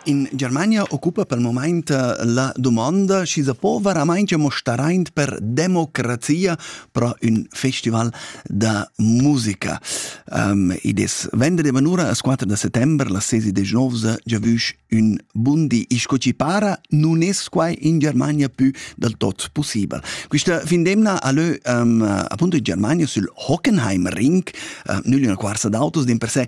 In Germania occupa pel momaint la dumonda, schi sa po veramainch amo staraint per democrazia pro ün festival da musica. Um, id es venderdi manura as 4 da settember, las sesi de Genovsa giavüsch ün bundi. E sco chi para nun es quai in Germania pü del tot possibel. Quista fin d'emna a lö um, appunto in Germania sül Hockenheim Ring, uh, nügl üna quarsa d'autos, din per se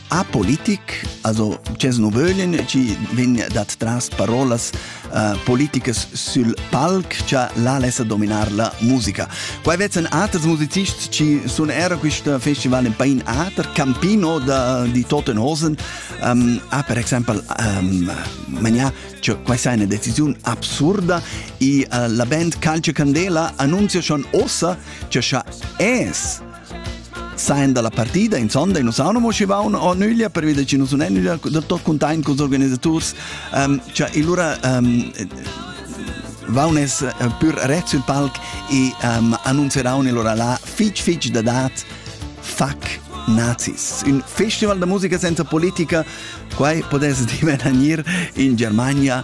apolitic, also c'es nu vöglin chi vegn dat tras parolas uh, politicas sul palc cha la lessa dominar la musica. Qua vezzan aters musicists chi sun era quist festival in pain ater, Campino da, di Tottenhosen um, ha per exempel um, magnà cioè, questa è una decisione assurda e uh, la band Calcio Candela annuncia schon ossa che è Sain dalla partida in sonda nus haun mo schivaun o nüglia pervi da chi nus sun nüglia da tot cuntaint culs organisaturs. Ähm, cha illura ähm, vaunes äh, pür ret sul palc e ähm, annunzeraun illura là fich fich da dat fuck nazis. Un festival da musica senza politica, quai podes divenir in Germania